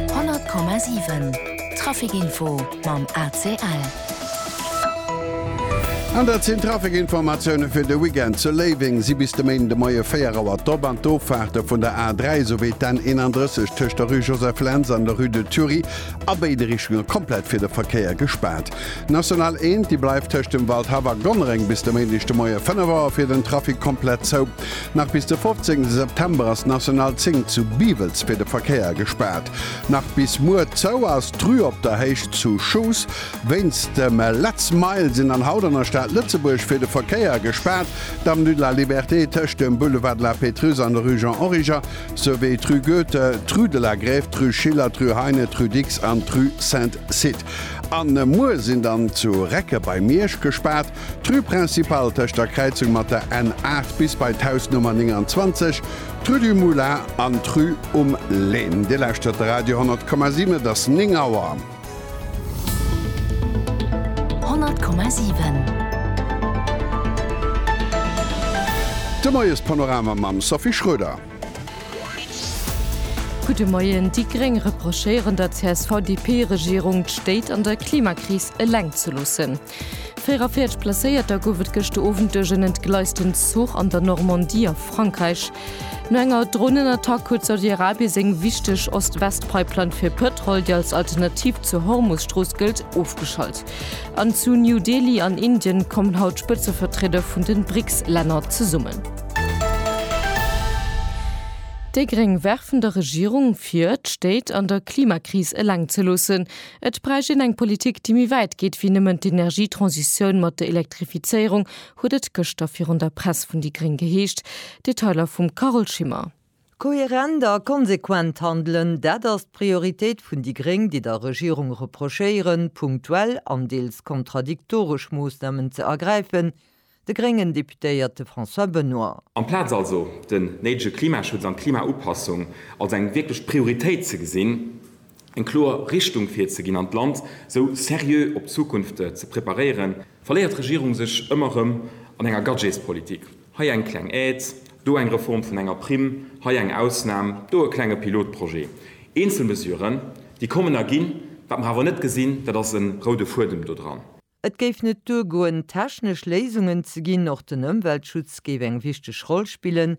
100,7 Traficinfo mam ACL. An dat sinn d'Traficinformatioune fir de Weekend. Zu Léiweng si bis de Méinden de Moie 4 Auer d'Op an d'Offaarte vun der A 3 souwéi d'N 31 tëscht der Rue Joseph Lentz an der Rue de Thury a béide Richtunge komplett fir de Verkéier gespaart. D'National 1, déi bleift tëscht dem Waldhaff a Gonnereng bis de Méindeg de Moie 5 Auer fir den Trafic komplett zou. Nach bis de 15 September ass d'National 10 zu Biwels fir de Verkéier gespaart. Nach bis muer zou ass d'Rue Op der Héicht zu Schoos wéinst dem Let's Mile sinn an haut an der Stad Lëtzebuerg fir de Verkéier gespaart. D'Avenue de la Liberté tëscht dem Boulevard de la Pétrusse an der Rue Jean Origer, souwéi d'Rue Goethe, d'Rue de la Grève, d'Rue Schiller, d'Rue Heine, d'Rue Dicks an d'Rue Saint-Cite. A muer sinn dann zu Recke bei Miersch gespaart. D'Rue Principale tëscht der Kräizung mat der N 8 bis bei d'Hausnummer 29, d'Rue du Moulin an d'Rue um Län. Dir lauschtert de Radio 10,7, et ass 9 Auer. 10,7. De Moiespanorama mam Sophie Schroeder. Gudde Moien. Déi Gréng reprochéieren der CSV-DP-Regierung, d'Stéit an der Klimakris eleng ze loossen. 44 Blesséierter gouf et gëschter Owend duerch en entgleisten Zuch an der Normandie a Frankräich. No enger Dronenattack huet Saudi-Arabie seng wichteg Ost-West-Pipeline fir Pëtrol, déi als Alternativ zur Hormus-Strooss gëllt, ofgeschalt. An zu New Delhi an Indien kommen haut d'Spëtzevertrieder vun de BRICS-Länner zesummen. Déi Gréng werfen der Regierung vir, d'Stéit an der Klimakris eleng ze loossen. Et bräicht een eng Politik, déi méi wäit geet wéi nëmmen d'Energietransitioun mat der Elektrifizéierung, huet et gëschter virun der Press vun déi gréng geheescht. Detailer vum Carole Schimmer. Kohärent a konsequent handelen, dat ass d'Prioritéit vun déi gréng, déi der Regierung reprochéieren, punktuell an deels kontradiktoresch Moossnamen ze ergräifen, De gréngen Deputéierte François Benoy. Amplaz also den néidege Klimaschutz an d'Klimaupassung als eng wierklech Prioritéit ze gesinn, eng kloer Richtung virzeginn an d'Land sou seriö op d'Zukunft ze preparéieren, verléiert d'Regierung sech ëmmer erëm an enger Gadgetspolitik, hei eng kleng Aide, do eng Reform vun enger Primm, hei eng Ausnam, do e klenge Pilotprojet. Eenzel Mesuren, déi kommen a ginn. Wat mer awer net gesinn, dat ass e roude Fuedem do dran. Et géif net duergoen, technesch Léisungen ze ginn, och den Ëmweltschutz géif eng wichteg Roll spillen,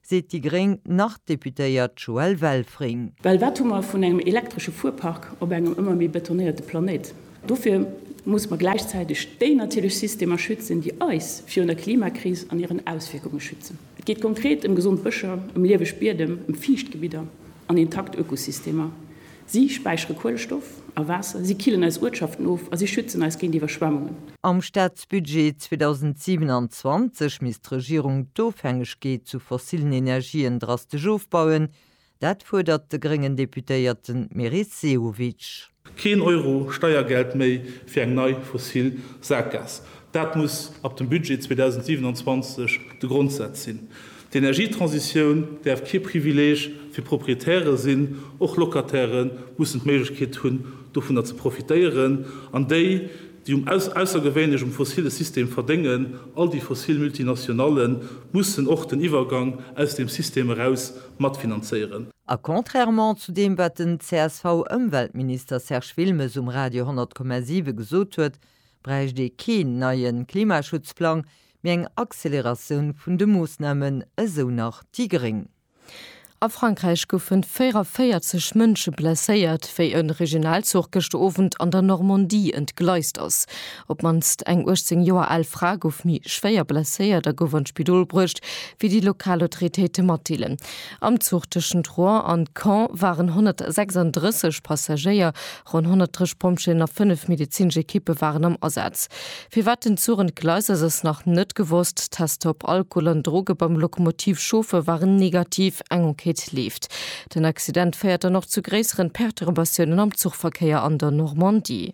seet déi gréng Nord-Deputéiert Joëlle Welfring. Well wat hu mer vun engem elektresche Fuerpark op engem ëmmer méi betonéierte Planéit? Dofir musse mer gläichzäiteg déi natierlech Systemer schützen, déi eis virun der Klimakris an hiren Auswierkunge schützen. Et geet konkret ëm gesond Bëscher, ëm lieweg Biedem, ëm fiicht Gebidder an intakt Ökosystemer. Si späichere Kuelestoff a Waasser, si killen eis Uertschaften of a si schützen eis géint Iwwerschwemmungen. Am Staatsbudget 2027 misst d'Regierung d'Ofhängegkeet zu fossillen Energien drastesch ofbauen, Dat fuerdert de gréngen Deputéierten Meris Sehovic. Keen Euro Steiergeld méi fir eng nei fossil Sackgaass, dat muss ab dem Budget 2027 de Grondsaz sinn. D'Energietransitioun däerf kee Privileeg fir Proprietäre sinn, och Locatairë mussen d'Méiglechkeet hunn, dovunner ze profitéieren, an déi, déi um aussergewéinlechem fossille System verdéngen, all déi fossil Multinationallen, mussen och den Iwwergang aus deem System eraus matfinanzéieren. A contrairement zu deem, wat den CSV-Ëmweltminister Serge Wilmes um Radio 100,7 gesot huet, bräicht ee keen neie Klimaschutzplang, mee eng Acceleratioun vun de Moossnamen, esou nach déi gréng. A Frankräich goufen 44 Mënsche blesséiert, wéi e Regionalzuch gëschter Owend an der Normandie entgleist ass. Op d'mannst eng 18 Joer al Fra gouf méi schwéier blesséiert a gouf an d'Spidol bruecht, wéi déi lokal Autoritéite matdeelen. Am Zuch tëschent Rouen an Caen waren 136 Passagéier, ronn 130 Pompjeeën a fënnef medezinesch Ekippe waren am Asaz. Firwat den Zuch entgleist ass, ass nach net gewosst. D'Tester op Alkohol an Droge beim Lokomotivchauffer waren negativ. Eng Enquête leeft. Den Accident féiert dann och zu gréisseren Perturbatiounen am Zuchverkéier an der Normandie.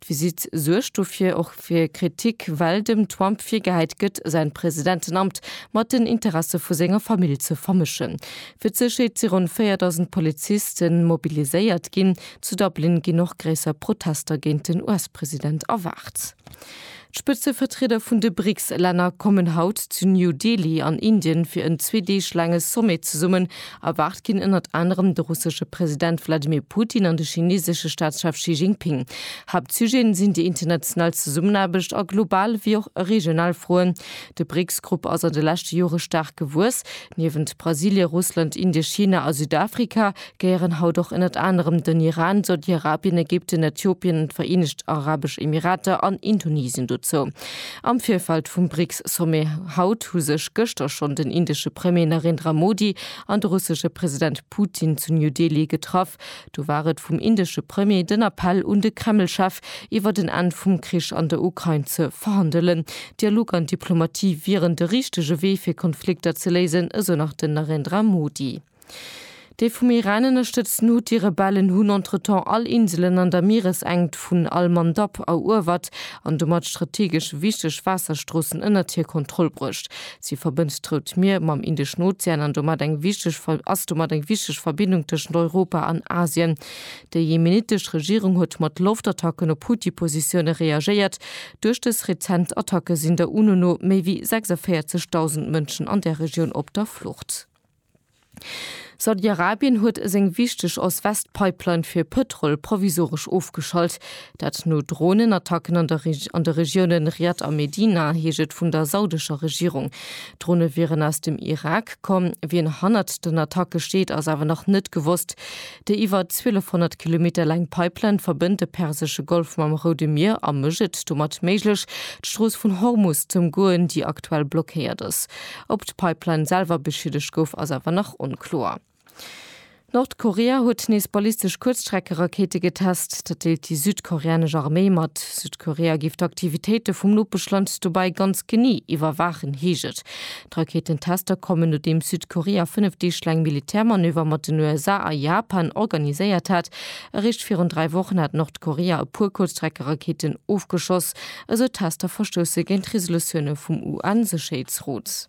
D'Visitt suergt dofir och fir Kritik, well dem Trump virgehäit gëtt, säin Presidentenamt mat den Interesse vu senger Famill ze vermëschen. Fir d'Sécherheet si ronn 4.000 Poliziste mobiliséiert ginn. Zu Dublin ginn och gréisser Protester géint den US-President erwaart. D'Spëtzevertrieder vun de BRICS-Länner kommen haut zu New Delhi an Indien fir en zwee Deeg laange Sommet zesummen. Erwaart ginn ënnert anerem de russesche President Wladimir Putin an de chineesesche Staatschef Xi Jinping. Haaptsujeten sinn déi international Zesummenaarbecht a global wéi och regional Froen. De BRICS-Grupp ass an de leschte Jore staark gewuess. Niewent Brasilie, Russland, Indie, China a Südafrika gehéieren haut och ënnert anerem den Iran, Saudi-Arabien, Ägypten, Äthiopien, d'Vereenegt Arabesch Emirater an Indonesien dozou. Am Virfeld vum BRICS-Sommet haut hu sech gëschter schonn den indesche Premier Narendra Modi an de russesche President Putin zu New Delhi getraff. Do war et vum indesche Premier den Appell un de Kreml-Chef, iwwert en Enn vum Krich an der Ukrain ze verhandelen. Dialog an Diplomatie wieren de richtege Wee fir Konflikter ze léisen, esou nach den Narendra Modi. Dee vum Iran ënnerstëtzten Huthi-Rebellen hunn entretemps all Inselen an der Mieresenkt vun al-Mandab eruewert an domat strategesch wichteg Waasserstroossen ënnert hir Kontroll bruecht. Si verbënnt d'Rout Mier mam Indeschen Ozean an domat eng wichteg ass domat eng wichteg Verbindung tëschent Europa an Asien. Déi jemenitesch Regierung huet mat Loftattacken op Huthi-Positioune reagéiert. Duerch dës rezent Attacke sinn der UNO no méi wéi 46.000 Mënschen an där Regioun op der Flucht. Saudi-Arabien huet seng wichteg Ost-West-Pipeline fir Pëtrol provisoresch ofgeschalt. Dat no Dronenattacken an der an de Regioune Riad a Medina, heescht et vun der saudescher Regierung. D'Drone wieren aus dem Irak komm. Wien hannert den Attacke steet, ass awer nach net gewosst. Déi iwwer 1.200 Kilometer laang Pipeline verbënnt de persesche Golf mam Roude Mier a mécht et domat méiglech, d'Strooss vun Hormus z'ëmgoen, déi aktuell blockéiert ass. Ob d'Pipeline selwer beschiedegt gouf, ass awer nach onkloer. Nordkorea huet nees ballistesch Kuerzstreckerakéite getest. Dat deelt déi südkoreanesch Arméi mat. Südkorea géif d'Aktivitéite vum Nopeschland dobäi ganz genee iwwerwaachen, heescht et. D'Rakéitentester kommen, nodeems Südkorea fënnef Deeg laang Militärmanöver mat den USA a Japan organiséiert hat. Eréischt virun dräi Wochen hat Nordkorea e puer Kuerzstreckerakéiten ofgeschoss. Esou Tester verstousse géint Resolutioune vum UN-Sécherheetsrot.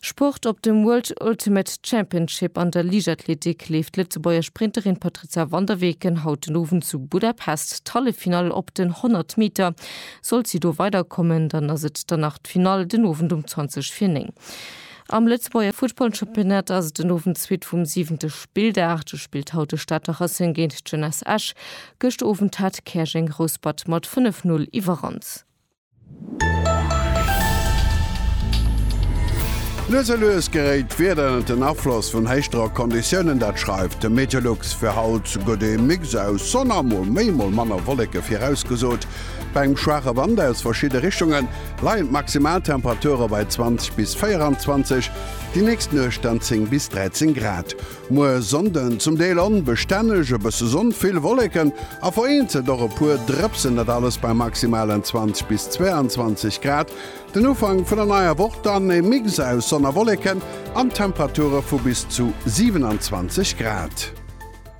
Sport, Op dem World Ultimate Championship an der Liichtathletik leeft d'Lëtzebuerger Sprinterin Patrizia van der Weken haut den Owend zu Budapest d'Halleffinall. Op den 100 Meter sollt si do weiderkommen, dann ass et dann nach d'Finall den Owend um 20 vir 9. Am Lëtzebuerger Futtballchampionnat ass et den Owend d'Suite vum siwente Spilldag. Do spillt haut de Stater Racing géint d'Jeunesse Esch. Gëscht Owend hat Käerjeng Rouspert mat 5, 0 iwwerrannt. Lues a lues geréit d'Wieder ënnert den Afloss vun héischdrock Konditiounen. Dat schreift de Meteolux. Fir haut gëtt ee Mix aus Sonn a mol méi mol manner Wolleke virausgesot, bei engem schwaache Wand aus verschidde Richtungen. leien d'Maximaltemperature bei 20 bis 24, déi nächst Nuecht dann 10 bis 13 Grad. Muer Sonnden zum Deel onbestänneg, e bësse Sonn, vill Wolleken a vereenzelt och e puer Drëpsen, dat alles bei maximalen 20 bis 22 Grad. Den Ufank vun der neier Woch dann e Mix aus Sonn a Wolleken an Temperature vu bis zu 27 Grad.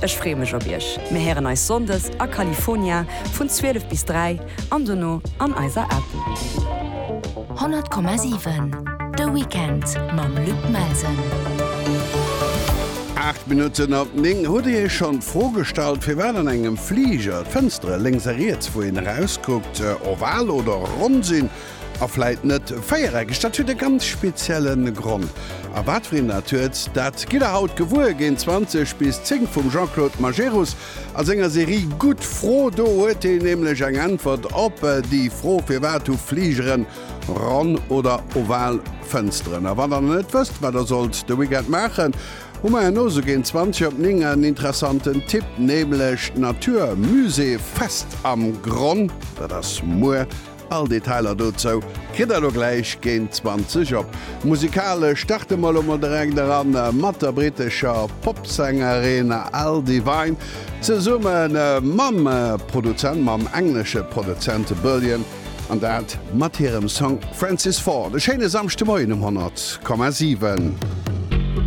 Ech free mech op iech. Mir héieren eis Sonndes a California vun 12 bis 3 an dono an eiser App. 100,7 De Weekend mam Luc Melsen. Aacht Minutten op néng. Hutt Dir Iech schonn d'Fro gestallt, firwat an engem Fliger d'Fënstere lénks a riets, wou een erauskuckt, oval oder ronn sinn? A vläit net véiereckeg, dat huet e ganz spezielle Grond. A wat fir een dat huet, dat gitt der haut gewuer. Géint 20 bis 10 vum Jean-Claude Majerus a senger Serie Gutt Fro. Do huet een nämlech eng Äntwert op déi Fro, Firwat hu Fligeren ronn oder oval Fënsteren? A wann der nach net wësst, wat der sollt de Weekend maachen, hu mer herno sou géint 20 op 9 en interessanten Tipp, nämlech d'Natur Musée Fest am Gronn. Dat ass muer All Detailer dozou kritt der elo gläich géint 20 op Musikalesch. Starte mer elo mol direkt eran mat der brittescher Popsängerin Al Devine zesumme mam Produzent, mam englesche Produzent Bullion, an dat mat hirem Song Francis Ford. E schéine Samschdemoien um 100,7.